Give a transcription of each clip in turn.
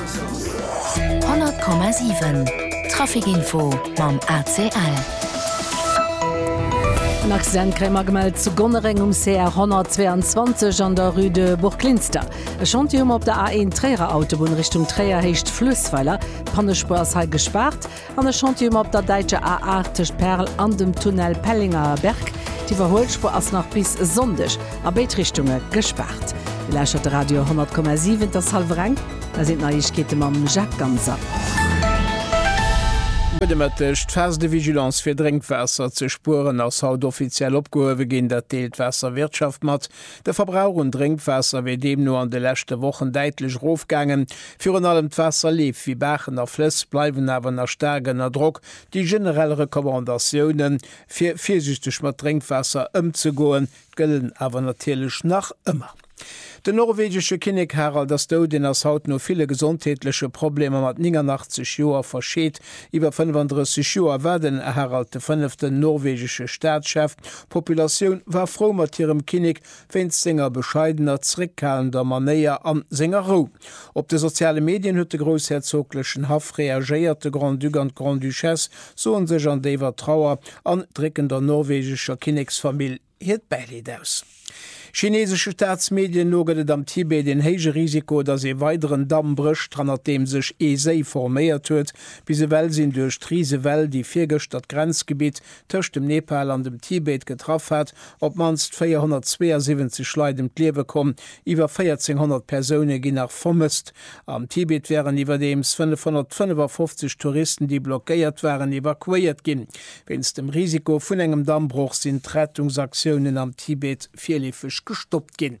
100 Komma 7 Trafikinfo mam ACL. En Accident kréie mer gemellt zu Gonnereng um CR 122 an der Rue de Burglinster. E Chantier hu mer op der A1 Tréierer Autobunn Richtung Tréier, Héicht Fluessweiler. D'Pannespur ass hei gespaart. An e Chantier mat der däitscher A8 tëscht Perl an dem Tunnel Pellengerberg. D'Iwwerhuelspuer ass nach bis Sonndeg a béid Richtunge gespaart. Dir lauschtert de Radio 10,7. Et ass hallwer eng. Da sinn d'Neiegkeete mam Jacques Ganser. Gudde Mëtteg. D'Phase de vigilance fir Drénkwaasser ze spueren ass haut offiziell opgehuewe ginn. Dat deelt d'Waasserwirtschaft mat. De Verbrauch un Drénkwaasser wier deemno an de leschte Wochen däitlech erofgaangen. Virun allem d'Waasserleef, wéi Baachen a Flëss, bleiwen awer nach staark ënner Drock. Déi generell Recommandatioune fir virsiichteg mat Drénkwaasser ëmzegoen, gëllen awer natierlech nach ëmmer. Den norwegesche Kinnek Harald ass dout. En ass haut no ville gesondheetleche Problemer mat 89 Joer verscheet. Iwwer 35 Joer war den Harald de Fënneften norwegesche Staatschef. D'Populatioun war frou mat hirem Kinnek wéinst senger bescheidener, zréckhalender Manéier an senger Rou. Op de soziale Medien huet de groussherzoglechen Haff reagéiert, de Grand-Duc an d'Grande-Duchesse soen sech an déiwer Trauer an drécken der norwegescher Kinneksfamill hiert Bäileed aus. Chineesesche Staatsmedien no gëtt et am Tibet een héije Risiko, dass ee weideren Damm brécht, hannert deem sech ee Séi forméiert huet. Bis ewell sinn duerch d'Risewell, déi virgëschter d'Grenzgebitt tëscht dem Nepal an dem Tibet getraff hat, op d'mannst 472 Leit ëm d'Liewe komm, iwwer 1.400 Persoune ginn nach vermësst. Am Tibet waren iwwerdeems 555 Touristen, déi blockéiert waren, evakuéiert ginn. Wéinst dem Risiko vun engem Dammbroch sinn d'Rettungsaktiounen am Tibet virleefeg gestoppt ginn.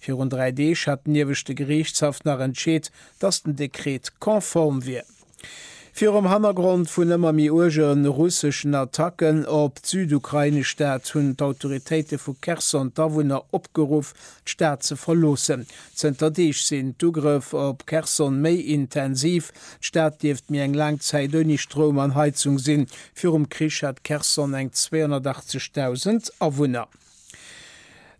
Virun dräi Deeg hat den Ieweschte Geriichtshaff nach entscheet, datt den Dekret konform wier. Virum Hannergrond vun ëmmer méi uerge russeschen Attacken op d'südukrainesch Stad hunn d'Autoritéite vu Cherson d'Awunner opgeruff, d'Stad ze verloossen. Zënter Deeg sinn d'Ugrëff op Cherson méi intensiv. D'Stad dierft méi eng laang Zäit ouni Stroum an Heizung sinn. Virum Krich hat Cherson eng 280.000 Awunner.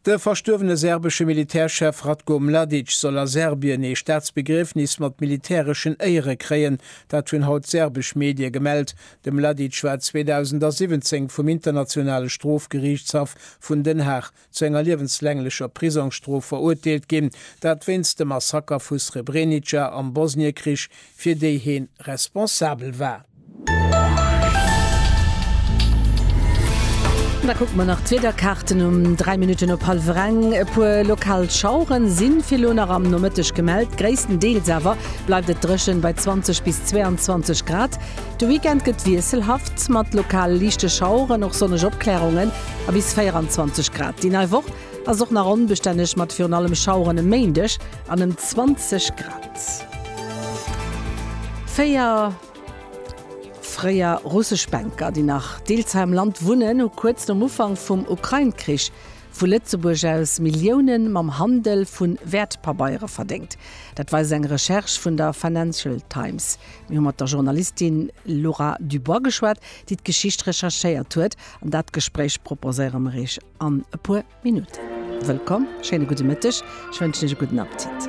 De verstuerwene serbesche Militärchef Ratko Mladic soll a Serbien ee Staatsbegriefnis mat militäreschen Éiere kréien. Dat hunn haut serbesch Medie gemellt. De Mladic war 2017 vum Internationale Strofgeriichtshaff vun Den Haag zu enger liewenslaanglecher Prisongsstrof verurteelt ginn. Dat wéinst dem Massaker vu Srebrenica am Bosniekrich, fir déi heen responsabel war. Da kucke mer nach d'Wiederkaarten um 3 Minutten op hallwer eng. E puer lokal Schauere si fir elo nach am Nomëtteg gemellt. Gréisstendeels awer bleift et dréchen bei 20 bis 22 Grad. De Weekend gëtt wiesselhaft, mat lokal liichte Schaueren, och sonneg Opklärungen a bis 24 Grad. Déi nei Woch ass och nach onbestänneg, mat virun allem Schaueren e Méindeg an ëm 20 Grad. Véier. Fréier russesch Banker, déi nach deels hei am Land wunnen, hu kuerz nom Ufank vum Ukrain-Krich vu Lëtzebuerg aus Millioune mam Handel vu Wäertpabeiere verdéngt. Dat weist eng Recherche vun der Financial Times. Mir hu mat der Journalistin Laura Dubois geschwat, déi d'Geschicht recherchéiert huet. An dat Gespréich proposéiere mer Iech an e puer Minutten. Wëllkomm, schéine gudde Mëtteg, ech wënschen Iech e gudden Appetit.